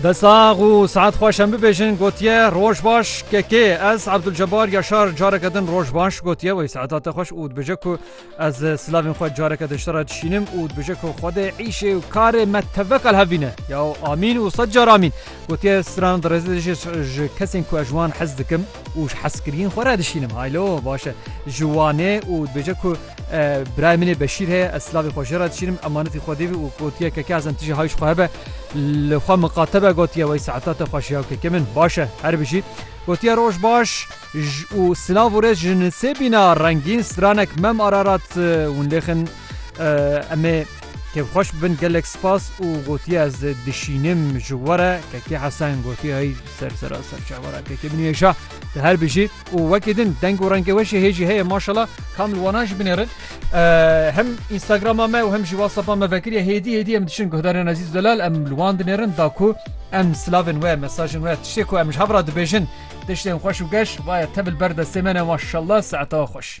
Desax û saet xweş em bibêjin gotiye roj baş KK ez Abdulcebar Yaşar careke din roj baş gotiye wê saeta te xweş û dibêje ku ez silavên xwe careke din ji te re dişînim û dibêje ku xwedê îşê û karê me tevek al hevîne ya amîn û sed car amîn gotiye stran dirêzê dijî ji kesên ku ez ji wan hez dikim û ji hezkiriyên xwe re dişînim haylo baş e ji wanê û dibêje ku Birayê min ê Beşîr heye, ez silavê xwe jê re dişînim, emanetî xwedê bû û gotiye keke ez em tije hayî ji xwe hebe. Li xwe miqatebe gotiye wey saeta te xweş ya keke min. Baş e, her bijî. Gotiye roj baş û silav û rêz ji nisê bîna rengîn stranek mem Ararat winlêxin em ê kêfxweş bibin gelek spas û gotiye ez dişînim ji we re keke Hesen gotiye hey ser sera serçe were keke min nihêşa tu her bijî. û wekî din deng û rengê we jî hê jî heye maşala kamil wanan jî binêrin hem Instagrama me û hem jî WhatsAppa me vekiriye hêdî hêdî em diçin guhdarên ezîz delal em li wan dinêrin da ku em silavên we mesajên we tiştê ku em ji hev re dibêjin tiştên xweş û geş vaye tev li ber destê me ne maşallah saetewa xweş.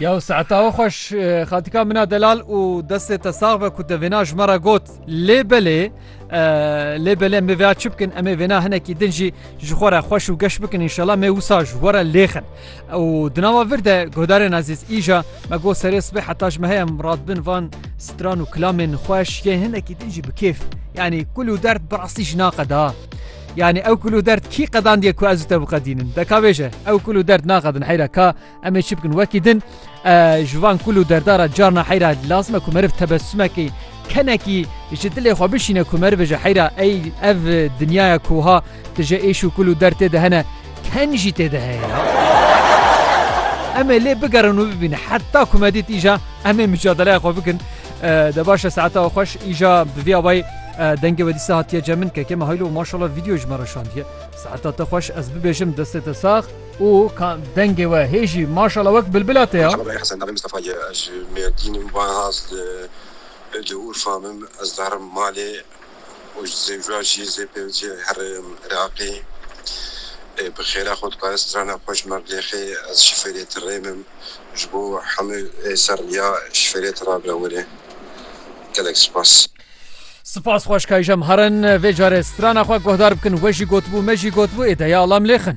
Yaw saeta we xweş xatika min a delal û destê te sax be ku te vêna ji me re got lê belê lê belê em vêya çi bikin em ê vêna hinekî din jî ji xwe re xweş û geş bikin înşela me wisa ji we re lêxin û dinava vir de guhdarên ezîz îja me got serê sibê heta ji me heye em rat bin van stran û kilamên xweş yê hinekî din jî bi kêf yanî kul û derd bi rastî ji naqeda. Yanî ew kul û derd kî qedandiye ku ez û te biqedînin? Deka wê je ew kul û derd naqedin heyra ka em ê çi bikin wekî din ji van kul û derdara carna heyra lazim e ku meriv tebesumekî kenekî ji dilê xwe bişîne ku merivê ji heyra ey ev dinyaya koha tu ji êş û kul û der tê de hene ken jî tê de heye em ê lê bigerin û bibîne heta ku me dît îja em ê micadelaya xwe bikin De baş e saeta xweş îja bi vî avayî dengê we dîsa hatiye cem min keke me haylo maşallah vîdeo ji me re şandiye saeta te xweş ez bibêjim destê te sax û dengê we hê jî maşallah wek bilbila te ya. Çavê Hesen Dawî Mistefa ye ez ji Mêrdîn im Van Haz li Urfa me ez diherim malê. û ji Zêwîra jî zê pêwicî herê Iraqê ê bi xêra xwe dikare strana xwe ji me bilêxê ez şifêrê ti rêmim ji bo hemû ê ser rîya şifêrê ti rabire were gelek spas. Spas xweş kayjem herin vê carê strana xwe guhdar bikin we jî gotibû me jî gotibû ê deya ala milêxin.